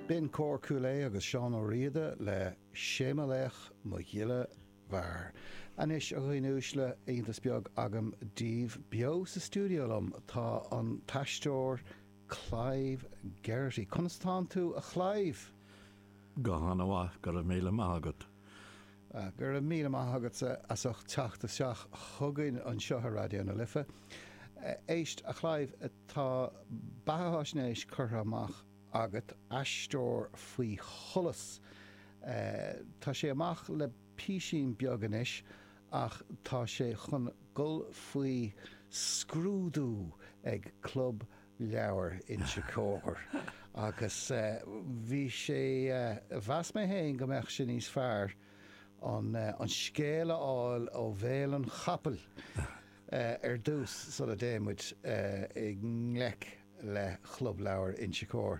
B'in Cór Chúil Aodha agus Seán Ó Riada le 'Sé mo Laoch mo Ghile Mhear'. Anois, a dhaoine uaisle, iontas beag agam daoibh. Beo sa stiúideo liom tá an t-aisteoir Clive Geraghty. Conas atánn tú, a Chlive? Go han-mhaith, go raibh míle maith agat. Go raibh míle maith agatsa as ucht teacht isteach chugainn anseo ar Raidió na Life. Éist, a Chlive, tá beatháisnéis curtha amach agat, Aisteoir Faoi Sholas. Tá sé amach le písín beag anois ach tá sé chun dhul faoi scrúdú ag Club leabhar Inse Chór agus bhí sé, mheas mé féin go mbeadh sé níos fearr an scéal a fháil ó bhéal an chapaill ar dtús sula dtéann muid i ngleic le Chlub Leabhar Inse Chór.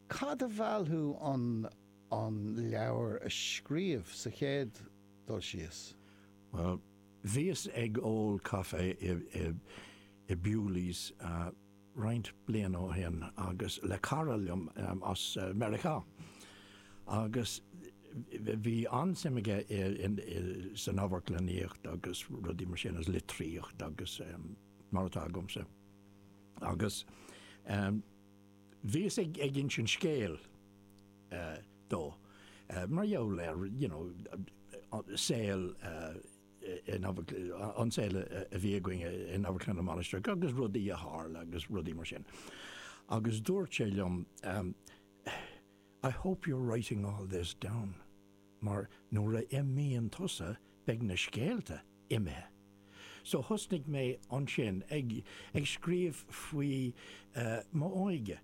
Cad a mheall thú an an leabhar a scríobh sa chéad dul síos? Bhuel, Bhíos ag ól caife i Bewley's roinnt bliana ó shin agus le cara liom as Meiriceá agus bhí an-suim aige san amharclannaíocht agus rudaí mar sin agus litríocht agus mar atá agamsa agus bhíos ag insint scéil dó, mar gheall ar, you know, saol, an saol a bhí againn in Amharclann na Mainistreach agus rudaí a tharla agus rudaí mar sin. Agus dúirt sé liom, I hope you're writing all this down mar nuair a imíonn tusa beidh na scéalta imithe. So thosnaigh mé ansin ag scríobh faoi m'óige.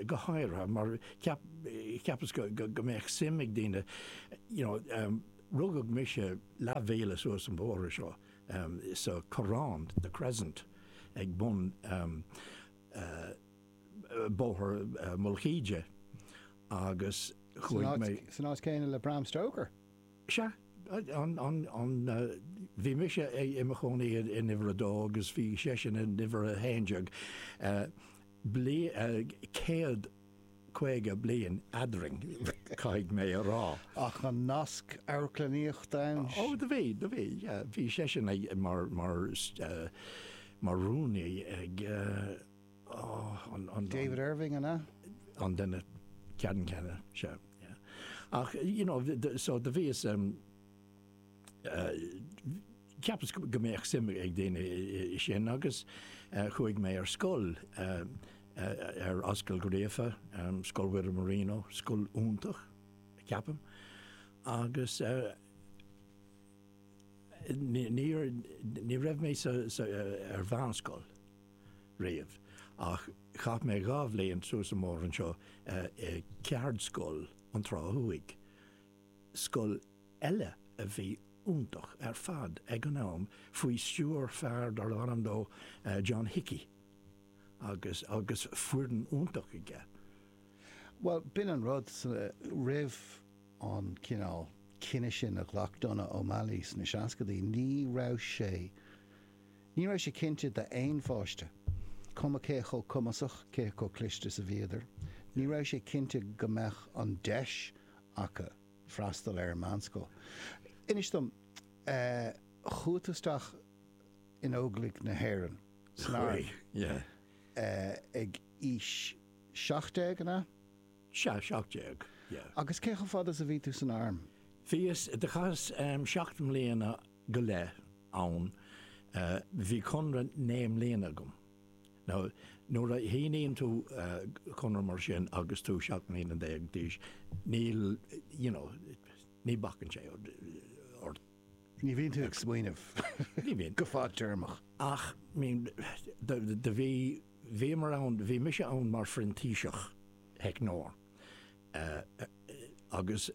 go háirithe mar cheapas go mbeadh suim ag daoine you know rugadh mise leathmhíle suas an bóthar seo sa Corrán, The Crescent, ag bun Bóthar Mullach Íde agus chuaigh mé. San áit céanna le Bram Stoker? Sea, bhí mise i mo chónaí in uimhir a dó agus bhí seisean in uimhir a haon déag. céad caoga bliain eadrainn, caithfidh mé a rá. Ach an nasc amharclannaíochta ann? Ó, do bhí, do bhí, yeah. Bhí seisean ag, mar, mar, mar rúnaí ag, ó, an, an. David Irving, an ea? An duine ceannann céanna, sea, yeah. Ach, you know, so do bhíos. Cheapas go mbeadh suim ag daoine i sin agus chuaigh mé ar scoil, ar Ascaill Uí Ghríofa, Scoil Mhuire Marino, scoil iontach, ceapaim, agus ní raibh mé ar mheánscoil riamh ach chaith mé dhá bhliain suas an bóthar anseo i gceardscoil an Trá Thuaidh, scoil eile a bhí iontach ar fad ag an am faoi stiúir fear darb ainm dó John Hickey agus agus foireann iontach aige. Bhuel, b'in an rud, roimh an cineál cinneadh sin a ghlac Donogh O'Malley sna seascaidí, ní raibh sé, ní raibh sé cinnte d'aon pháiste, cuma cé chomh cumasach, cé chomh cliste is a bhíodar, ní raibh sé cinnte go mbeadh an deis acu. freastal ar an meánscoil. Inis dom, chuaigh tú isteach in Óglaigh na hÉireann san arm ag aois seacht déag, an ea? Sea, seacht déag, yeah. Agus cé chomh fada is a bhí tú san arm? Bhíos, chaitheas seacht mbliana go leith ann, bhí conradh naoi mbliana agam. Now, nuair a shíníonn tú conradh mar sin agus tú seacht mbliana déag d'aois, níl, you know, ní bhacann sé ort. Ní bhíonn tú ag smaoineamh go fadtéarmach. Ach, I mean, do bhí, bhíomar ann, bhí mise ann mar phrintíseach theicneoir. agus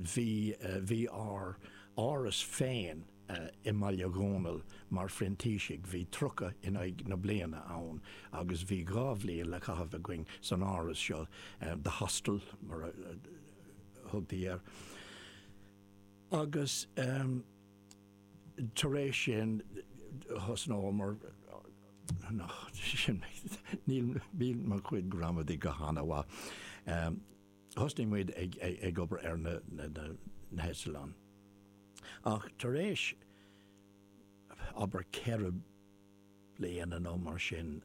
bhí ár áras féin i mBaile Dhónaill mar phrintísigh. Bhí tríocha in aghaidh na bliana ann agus bhí dhá bhliain le caitheamh againn san áras seo, 'the hostel' mar a thugtaí air. Agus. tar éis sin, thosnómar, nach, sin, níl, níl mo chuid gramadaí go hana-mhaith, thosnaigh muid ag, ag obair ar na, na, na, na heitleáin. Ach tar éis, abair ceithre bliana nó mar sin,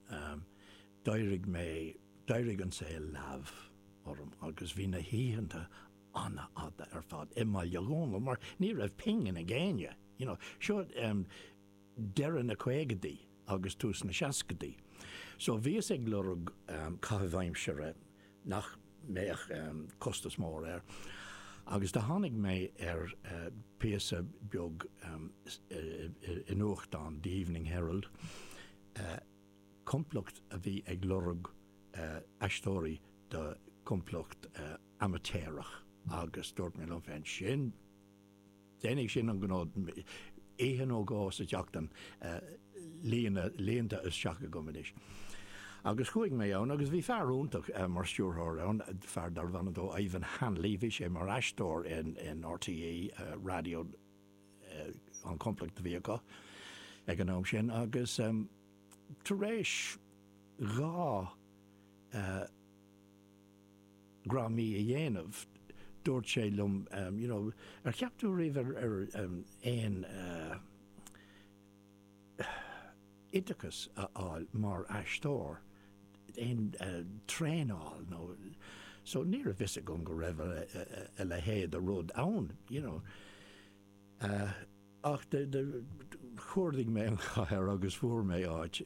d'éirigh mé, d'éirigh an saol leamh orm agus bhí na hoícheanta, an-fhada ar fad i mBaile Dhónaill mar ní raibh pingin ag éinne, you know. Seo deireadh na caogadaí agus tús na seascadaí. So bhíos ag lorg caitheamh aimsire nach mbeadh costas mór air agus do tháinig mé ar phíosa beag i nuachtán, The Evening Herald, complacht a bhí ag lorg aisteoirí do chomplacht, amaitéarach agus dúirt mé liom féin, sin, déanfaidh sin an gnó. Oíche nó dhó sa tseachtain líonta isteach agam anois. Agus chuaigh mé ann agus bhí fear iontach mar stiúrthóir ann, fear darbh ainm dó Ivan Hanley, bhí sé mar aisteoir in RTÉ radio, an complacht a bhí acu ag an am sin agus tar éis dhá, dhráma a dhéanamh, dúirt sé liom you know ar cheap tú ariamh ar aon oideachas a fháil mar aisteoir, aon traenáil nó so ní raibh fhios agam go raibh a leithéid de rud ann you know ach chuardaigh mé an chathair agus fuair mé áit i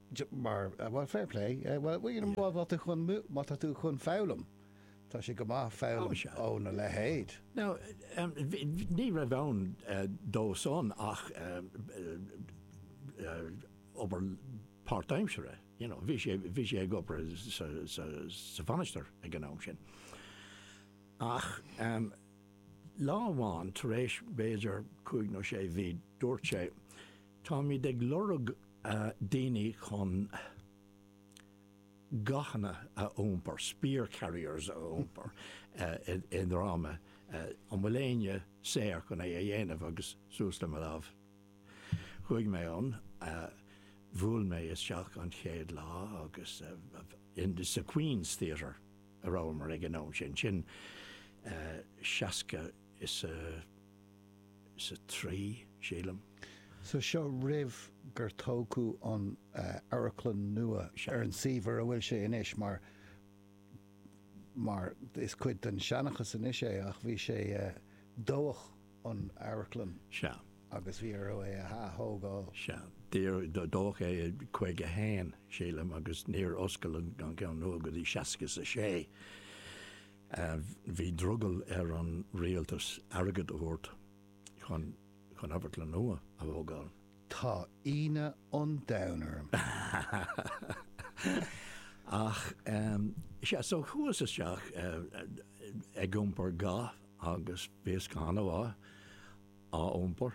Mar, bhuel, fair play. Bhuel, you know, má tá tú chun, má tá tú chun foghlaim, tá sé go maith foghlaim óna leithéid. Now, ní raibh ann dósan ach obair páirtaimsire, you know, bhí sé, bhí sé ag obair sa Mhainistir ag an am sin. Ach lá amháin tar éis b'fhéidir cúig nó sé mhí dúirt sé, Táimid ag lorg daoine chun gathanna a iompar, spear carriers a iompar i ndráma. An bhfuil éinne saor chun é a dhéanamh? Agus suas le mo lámh. Chuaigh mé ann, bhuail mé isteach an chéad lá agus sa Queen's Theatre a rabhamar ag an am sin, sin seasca is a, is 3, sílim. So seo roimh gur tógadh an amharclann nua ar an suíomh ar a bhfuil sé anois mar mar is cuid den seanchas anois é ach bhí sé dódh an amharclann Sea. agus bhí orthu é a ath-thógáil. Sea. Dódh é i 51, sílim, agus níor oscail an ceann nua go dtí 66. Bhí drogall ar an rialtas airgead a thabhairt chun amharclann nua a thógáil. Tá ionadh an domhain orm. Ach sea, so chuas isteach ag iompar ga agus bhíos go han-mhaith á iompar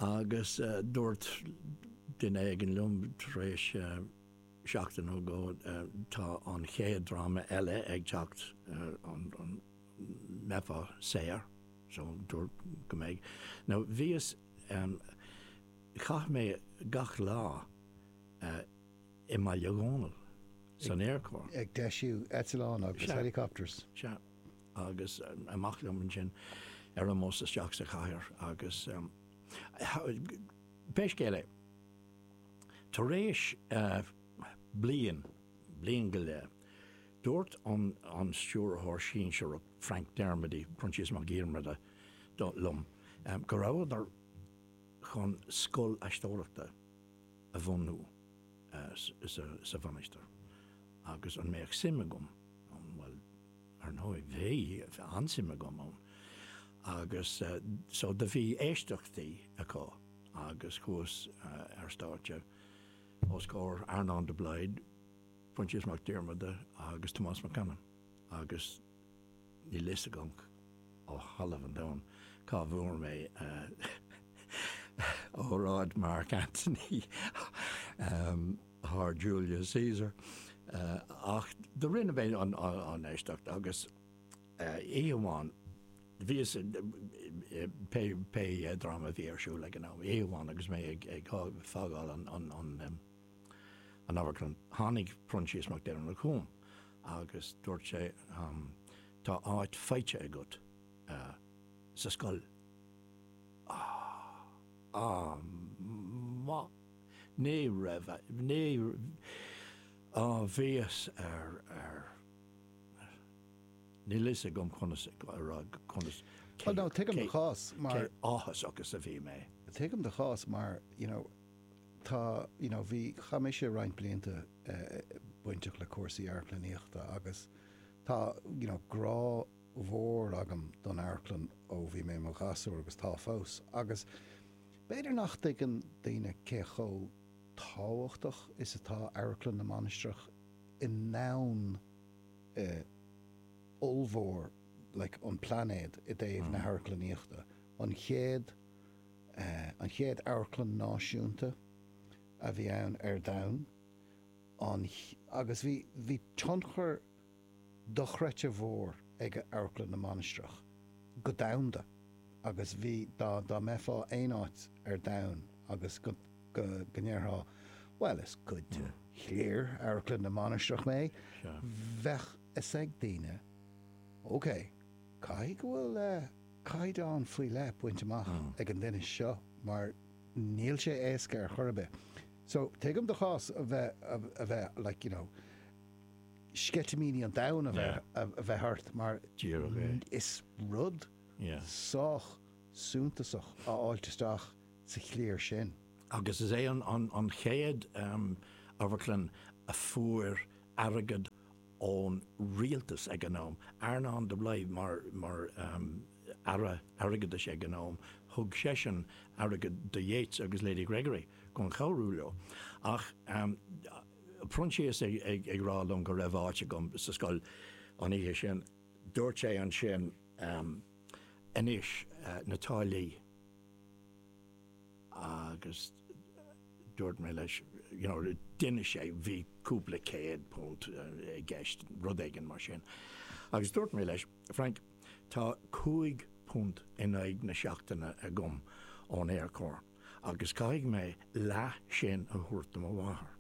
agus dúirt duine éigin liom tar éis. Seachtain nó dhó go tá an chéad dráma eile ag teacht an mbeifeá saor so dúrt go mbeidh nó bhíos chaith mé gach lá i mBaile Dhónaill san aerchór. ag deisiú eitleán agus Sea. helicopters. Sea. Agus amach liom ansin ar an mbus isteach sa chathair agus pé scéal é, Tar éis bliain, bliain go leith, dúirt an Stiúrthóir Sinsearach, Frank Dermody, Proinsias Mac Diarmada, liom go rabhadar chun scoil aisteoireachta a bhunú sa Mhainistir agus an mbeadh suim agam ann. Bhuel. Ar ndóigh, bhí an-suim agam ann agus so do bhí éisteachtaí acu agus chuas ar stáitse os comhair Earnáin de Blaghd, Proinsias Mac Diarmada agus Tomás Mac Anna agus níl a fhios agam ó thalamh an domhain cá bhfuair mé óráid Mark Anthony. as Julius Caesar, ach do rinne mé an éisteacht agus oíche amháin bhíos, pé dráma a bhí ar siúl ag an am, oíche amháin agus mé ag fágáil an amharclann, tháinig Proinsias Mac Diarmada chugam agus dúirt sé, Tá áit faighte agat sa scoil. Á! Á! Ní raibh, ní, á bhíos ar, ar, níl fhios agam conas a rá, conas, cé, cé, cé áthas is a bhí mé. Tuigim do chás mar, you know, tá, you know, bhí, chaith mise roinnt blianta bainteach le cúrsaí amharclannaíochta agus tá, you know, grá mhór agam don amharclann ó bhí mé i mo ghasúr, agus tá fós, agus b'fhéidir nach dtuigeann daoine cé chomh tábhachtach is atá Amharclann na Mainistreach i ndomhan eh ollmhór like an plainéad i dtaobh na hamharclannaíochta, an chéad eh, an chéad amharclann náisiúnta a bhí ann ar domhan, an, agus bhí, bhí tionchar. dochreidte mhór ag Amharclann na Mainistreach go domhanda agus bhí, dá mbeifeá aon áit ar domhan agus go ndéarfá, bhuel, is cuid de chliar Amharclann na Mainistreach mé, bheadh fhios ag daoine, ok, caithfidh go bhfuil caighdeán faoi leith bainte amach ag an duine seo mar níl sé éasca ar chor ar bith. So, tuigim do chás a bheith, like, you know. sceitimíní an domhain a bheith ort mar is rud sách suntasach a fháilt isteach sa chliar sin. Agus is é an chéad amharclann a fuair airgead ón rialtas ag an am. Earnán de Blaghd mar Aire Airgeadais ag an am, thug seisean airgead do Yeats agus Lady Gregory chun cabhrú leo. Proinsias ag rá liom go raibh áit agam sa scoil an oíche sin, dúirt sé ansin, Anois, na táillí. Agus dúirt mé leis, you know, d'inis sé, bhí cúpla céad punt i gceist, rud éigin mar sin. Agus dúirt mé leis, Frank, tá cúig phunt in aghaidh na seachtaine agam ón Aerchór. agus caithfidh mé leath sin a thabhairt do mo mháthair.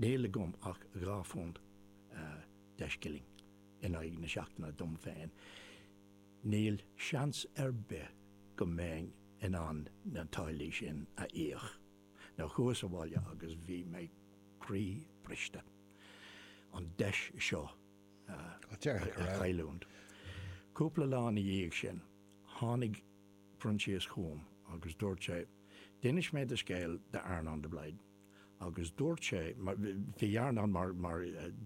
Níl agam ach dhá phunt deich scilling in aghaidh na seachtaine dom féin. Níl seans ar bith go mbeinn in ann na táillí sin a íoc so chuas abhaile agus bhí mé croí briste an deis seo a chailliúint. Cúpla lá ina dhiaidh sin, tháinig. Proinsias chugam agus dúirt sé, 'D'inis mé do scéal d'Earnán de Blaghd agus dúirt sé, bhí Earnán mar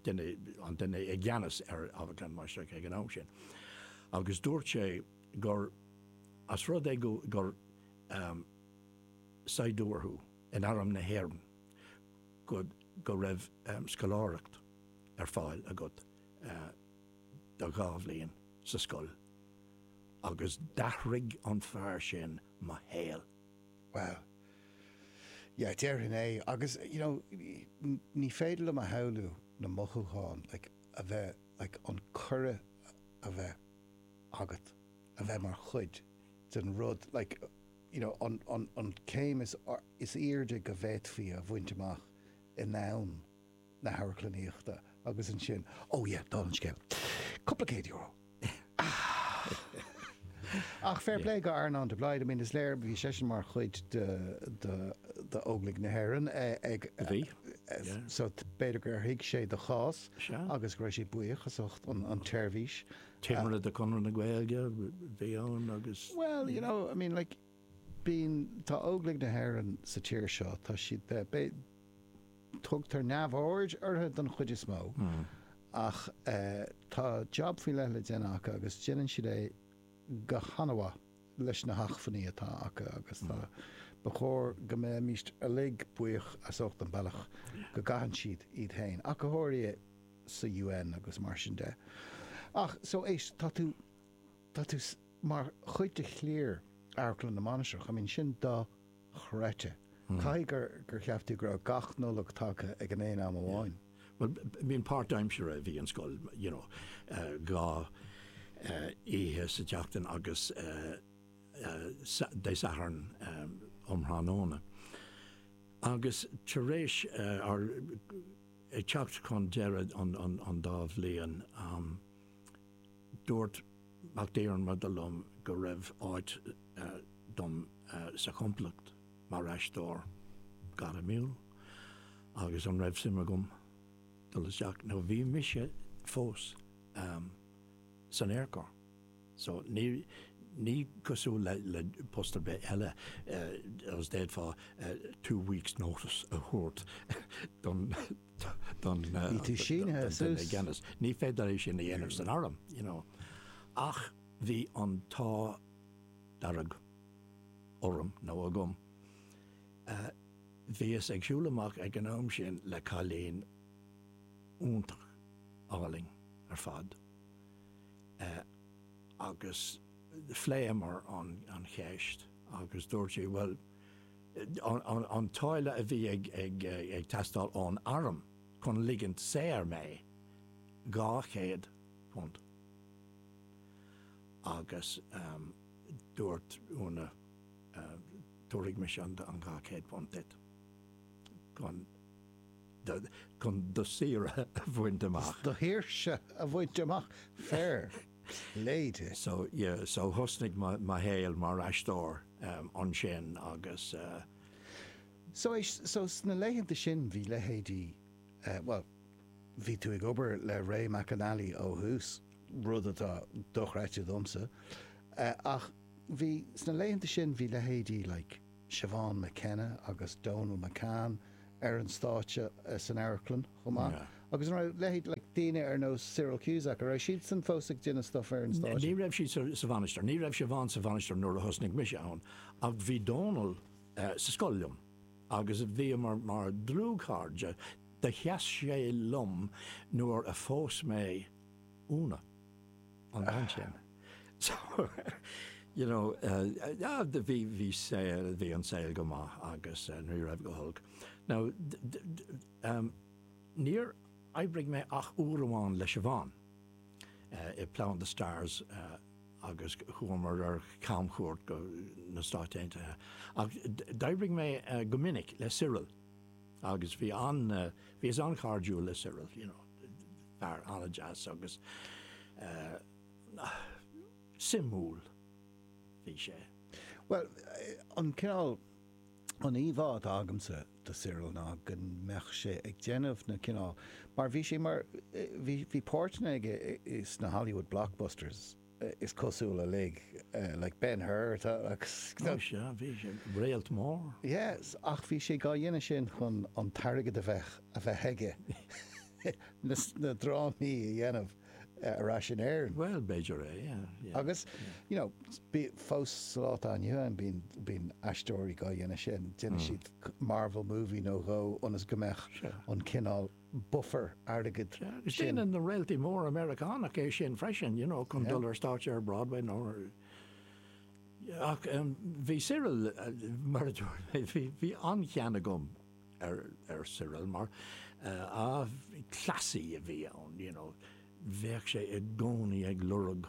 dhuine, an duine i gceannas ar Amharclann na Mainistreach ag an am sin, agus dúirt sé gur, ós rud é, gur saighdiúir thú in arm na hÉireann, go raibh scoláireacht ar fáil agat. do dhá bhliain sa scoil agus d'athraigh an fear sin mo shaol. Wow. Yeah, déarfainn é. Agus, you know, ní féidir liom a shamhlú na mothúcháin, like, a bheith, like, an cuireadh a bheith agat a bheith mar chuid den rud, like, you know, an, an, an céim is, is airde go bhféadfaí a bhaint amach in ann na hamharclannaíochta agus ansin, oh yeah, dála an scéil. Cúpla céad euro. Ach fair play go Earnán de Blaghd, I mean is léir bhí seisean mar chuid de Óglaigh na hÉireann ag, A bhí, yeah. so b'fhéidir gur thuig sé do chás Sea. agus go raibh sé buíoch as ucht an tseirbhís. Timire de Chonradh na Gaeilge bhí ann agus, Well, you know, I mean like, I mean, Tá Óglaigh na hÉireann sa tír seo, tá siad, bé, tugtar neamhaird orthu don chuid is mó ach eh tá jab faoi leith le déanamh acu agus déanann siad é go han-mhaith leis na hachmhainní atá acu agus tá, ba chóir go mbeimis uilig buíoch as ucht an bealach go gcaitheann siad iad féin, ach go háirithe sa UN agus mar sin de. Ach so éist, tá tú. Tá tú mar chuid de chliar Amharclann na Mainistreach. I mean, sin dochreidte. Caithfidh gur, gur cheap tú go raibh gach Nollaig tagtha ag an aon am amháin. Bhuel, I mean, páirtaimseartha a bhí an scoil, you know, dhá oíche sa tseachtain agus Dé Sathairn um thráthnóna. Agus tar éis, or ag teacht chun deireadh an dá bhliain, Dúirt Mac Diarmada liom go raibh áit dom sa chomplacht mar aisteoir gairmiúil agus an raibh suim agam dul isteach nó bhí mise fós san Aerchór so ní cosúil le post ar bith eile d'fhéadfá two weeks notice a thabhairt don don gceannas. Ní féidir é sin a dhéanamh san arm. Ach bhí an t-ádh dearg orm, nó agam, bhíos ag siúl amach ag an am sin le cailín iontach álainn ar fad agus phléamar an cheist agus dúirt sí, bhuel, an táille a bhí ag teastáil ón arm chun ligint saor mé, dhá chéad punt. Agus dúirt Úna, Tabharfaidh mise an dhá chéad punt duit chun. chun do shaoire a bhaint amach. do shaoirse a bhaint amach fair lady. So ye, so thosnaigh mo shaol mar aisteoir ansin agus. So eh, so sna laethanta sin bhí leithéidí, bhuel, bhí tú ag obair le Ray McAnally ó thús, rud atá dochreidte domsa, ach bhí, sna laethanta sin bhí leithéidí like, Siobhán McKenna agus Donal McCann ar an stáitse san amharclann chomh maith. Yeah. Agus an raibh leithéid like daoine ar nós Cyril Cusack, an raibh siadsan fós ag déanamh stuff ar an stáitse? Ní raibh siad sa Mhainistir, ní raibh Siobhán sa Mhainistir nuair a thosnaigh mise ann ach bhí Donal sa scoil liom agus bhíomar mar dlúthchairde. Do sheas sé liom nuair a phós mé Úna. an am sin. So, you know, eh, bhí, bhí saol, bhí an saol go maith agus eh, nuair a bhí go holc. Now, ehm, níor oibrigh mé ach uair amháin le Siobhán eh, i Plough and the Stars eh, agus chuamar ar camchuairt go na Stáit Aontaithe. Ach d'oibrigh mé eh, go minic le Cyril agus bhí an, eh, bhíos an-chairdiúil le Cyril, you know. fear an-deas agus suimiúil a bhí sé. Bhuel, an cineál, an íomhá atá agamsa de Cyril ná go mbeadh sé ag déanamh na cineál, mar bhí sé mar, bhí páirteanna aige sna Hollywood blockbusters, is cosúil, uilig like Ben Hur type. Ó sea, bhí sé, réalt mór. Yes, ach bhí sé dhá dhéanamh sin chun an t-airgead a bheith a bheith aige na drámaí a dhéanamh ar ais in Éirinn. Bhuel, b'fhéidir é, yeah. Agus, you know, fós sa lá atá inniu ann bíonn bíonn aisteoirí dhá dhéanamh sin, déanfaidh siad Marvel movie nó dhó ionas go mbeadh an cineál bufar airgid sin. Déanann na réaltaí móra Meiriceánach é sin freisin, you know, chun dul ar stáitse ar Broadway nó ar. Ach bhí Cyril, mar a dúirt mé, bhí, bhí an-chion agam ar, ar Cyril mar, ah, cleasaí a bhí ann, you know, bheadh sé i gcónaí ag lorg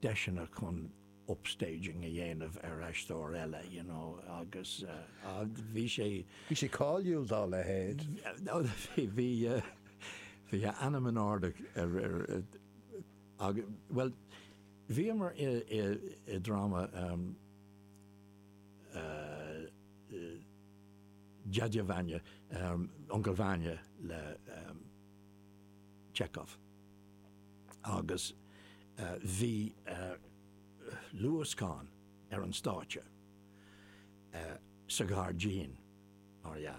deiseanna chun. upstaging a dhéanamh ar aisteoir eile, you know, agus bhí sé. Bhí sé cáiliúil dá leithéid. Bhí, bhí a ainm in airde ar, ar, agus, bhuel, bhíomar i, i, i dráma Dyadya Vanya, Uncail Vanya le Chekhov. agus bhí luascán ar an stáitse, sa ghairdín, mar dhea,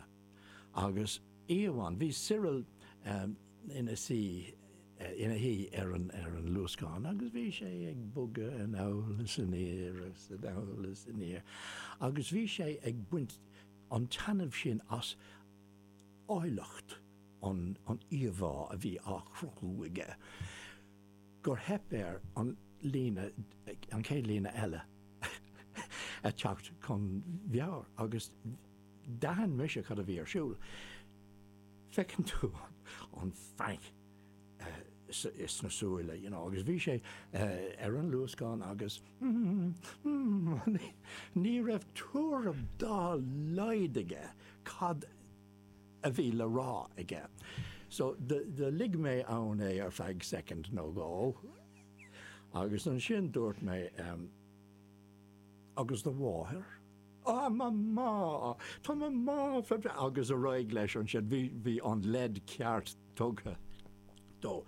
agus oíche amháin, bhí Cyril ina suí, ina shuí ar an luascán agus bhí sé ag bogadh anall is aniar is anall is aniar agus bhí sé ag baint an taitneamh sin as áilleacht an íomhá a bhí á chruthú aige gur theip air an líne, an chéad líne eile, a theacht chun meabhair, agus d'aithin mise cad a bhí ar siúl. Feiceann tú an feanc sna súile, you know, agus bhí sé ar an luascán agus ní raibh tuairim dá laghad aige cad a bhí le rá aige. So do lig mé ann é ar feadh soicind nó dhó agus ansin dúirt mé, Agus do mháthair? Á, mo mhá! Tá mo mhá fabhra-, agus ar aghaidh leis ansin. Bhí bhí an leid ceart tugtha dó.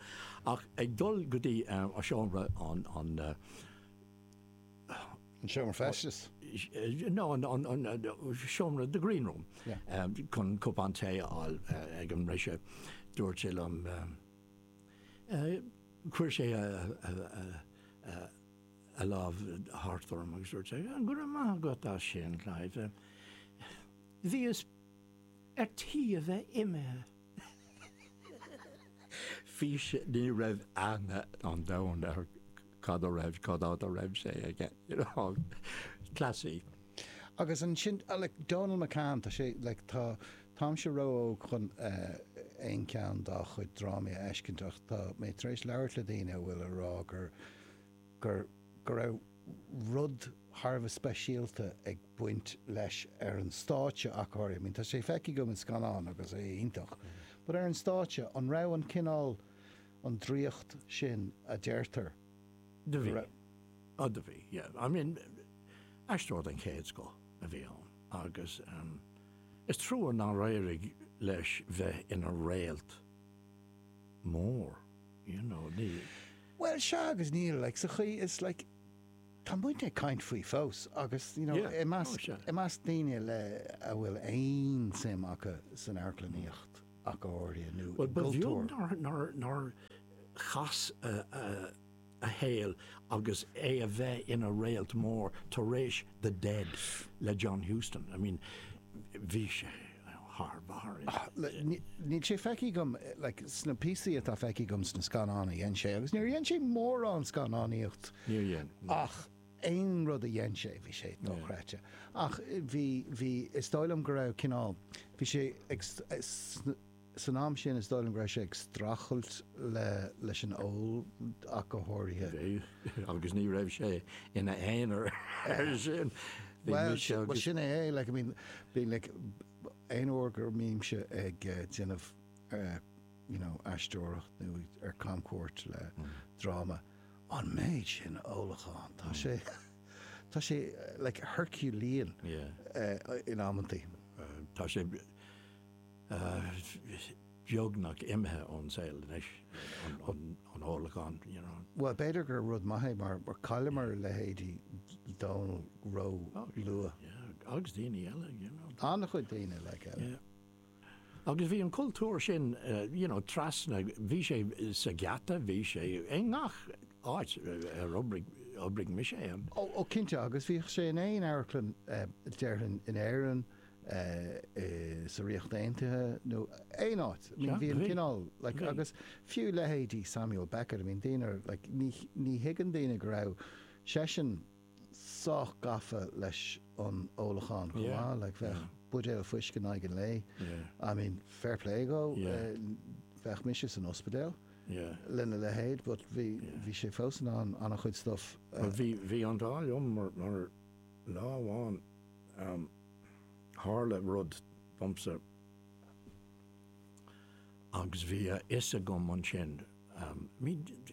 Ach ag dul go dtí seomra an an. An seomra feistis. Nó an seomra, the green room, chun cupán tae a fháil ag an mbriseadh. Dúirt sé liom, chuir sé a lámh thart orm agus dúirt sé, Go raibh maith agat as sin, Clive. Bhíos ar tí a bheith imithe. Fís, ní raibh aithne an domhain ar cad a raibh, cad fhad a raibh sé aige, you know, cleasaí. Agus ansin, like, Dónal McCann, tá sé, like, tá, táimse ró-óg chun aon cheann dá chuid drámaí a fheiscint ach tá mé tar éis labhairt le daoine a bhfuil a rá gur, gur go raibh rud thar a bheith speisialta ag baint leis ar an stáitse ach go háirithe. I mean, tá sé feicthe agam in scannáin agus é iontach, but ar an stáitse, an raibh an cineál, an draíocht sin a deirtear go raibh? Do bhí. Ó, do bhí, yeah. I mean, aisteoir den chéad scoth a bhí ann agus ehm, is trua nár éirigh leis bheith ina réalt mór. you know, ní. Bhuel, sea, agus níl, like, sa chaoi is, like, tá muidne ag caint faoi fós agus, you know, Yeah, i measc, oh, sure. i measc daoine le, a bhfuil aon suim acu san amharclannaíocht ach go háirithe nó i gcultúr. Well, ba bheag nár, nár, nár chas a, a, a shaol agus é a bheith ina réalt mór tar éis The Dead le John Huston. I mean, bhí sé. thar barr i. Níl sé feicthe agam sna píosaí atá feicthe agam sna scannáin a dhein sé, agus níor dhein sé mórán scannánaíocht ach aon rud a dhein sé bhí sé dochreidte ach bhí, is dóigh liom go raibh cineál, bhí sé ag, san am sin is dóigh liom go raibh sé ag streachailt leis an ól ach go háirithe. agus ní raibh sé ina aonar air sin. Bhuel, sin é é, like, I mean, being like, aon uair go mbímse ag déanamh, you know, aisteoireacht nó ar camchuairt le dráma, an méid sin ólachán, tá sé, tá sé, like, Herculean in amantaí. Tá sé. beagnach imithe ón saol anois, an ólachán, you know. Bhuel, b'fhéidir gur rud maith é mar chailleamar a leithéidí Dónall ró luath. Yeah, agus daoine eile, you know. An-chuid daoine, like, eile. Yeah. Agus bhí an cultúr sin, you know, trasna, bhí sé sa gheata, bhí sé i ngach áit ar oibrigh mise ann. Ó, cinnte, agus bhíodh sé in aon amharclann, déarfainn, in Éirinn, sa Ríocht Aontaithe nó aon áit. I mean, bhí an cineál, like, agus fiú leithéidí Samuel Beckett, I mean, daoine, like, ní, ní thuigeann daoine go raibh seisean sách gafa leis an ólachán chomh maith, like, bheadh buidéal fuisce in aghaidh an lae, I mean, fair play dhó, bheinn mise san ospidéal lena leithéid but bhí, bhí sé fós in ann an-chuid stuff a. Bhí, bhí an t-ádh liom mar, mar lá amháin, Tharla rud domsa agus bhí a fhios agam ansin,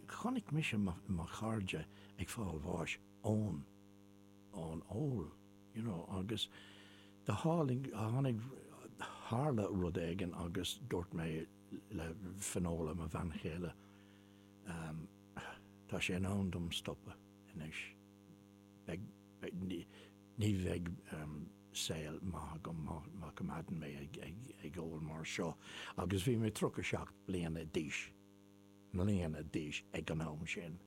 chonaic mise mo chairde ag fáil bháis ón ól, you know, agus tharla rud éigin agus dúirt mé le Finola, mo bhean chéile, tá sé in am dom stopadh anois. Ní bheidh saol maith agam má choimeádaim mé ag ól mar seo agus bhí mé tríocha seacht bliana d'aois, mbliana d'aois ag an am sin,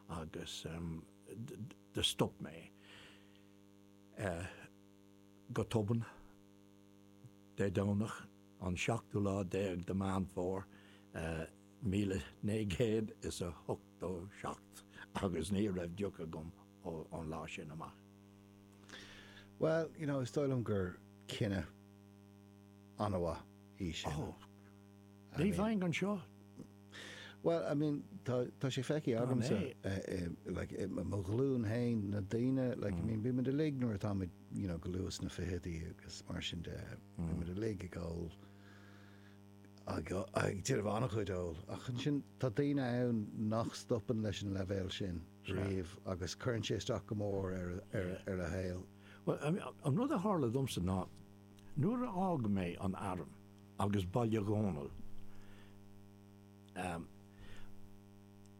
agus do stop mé go tobann Dé Domhnach an seachtú lá déag de Mheán Fómhair míle naoi gcéad is a hochtó seacht agus ní raibh deoch agam ón lá sin amach. Bhuel, you know, is dóigh liom gur cinneadh an-mhaith é sin. Oh, ní bheinn anseo. Bhuel, I mean, tá sé feicthe agamsa, like, i mo ghlúin féin, na daoine, like, I mean, bímid uilig nuair atáimid, you know, go luath sna ficheadaí agus mar sin de, bímid uilig ag ól ag déanamh an-chuid óil, ach ansin tá daoine ann nach stopann leis an leibhéal sin riamh agus cuireann sé isteach go mór ar a shaol. Bhuel, an rud a tharla domsa ná nuair a d'fhág mé an arm agus Baile Dónaill, em,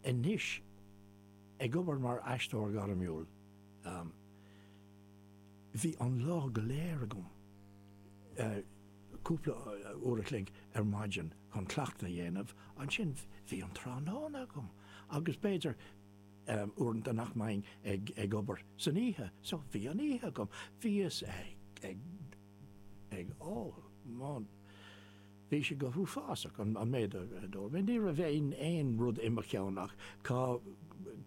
anois, ag obair mar aisteoir gairmiúil, em, bhí an lá go léir agam, eh, cúpla uair a chloig ar maidin chun cleachtadh a dhéanamh, ansin bhí an tráthnóna agam agus b'fhéidir uaireanta nach mbeinn ag obair san oíche so bhí an oíche agam. Bhíos ag ól, bhí sé go huafásach an méid a d'ól mé, ní raibh aon rud i mo cheann ach cá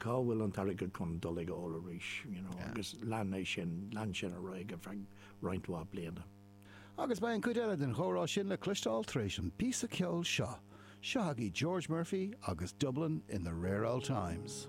bhfuil an t-airgead chun dul ag ól arís, you know, agus lean sin ar feadh roinnt mhaith bliana. Agus beidh an cuid eile den chomhrá sin le cloisteáil tar éis an píosa ceoil seo. Seo chugaibh George Murphy agus Dublin in the Rare Old Times.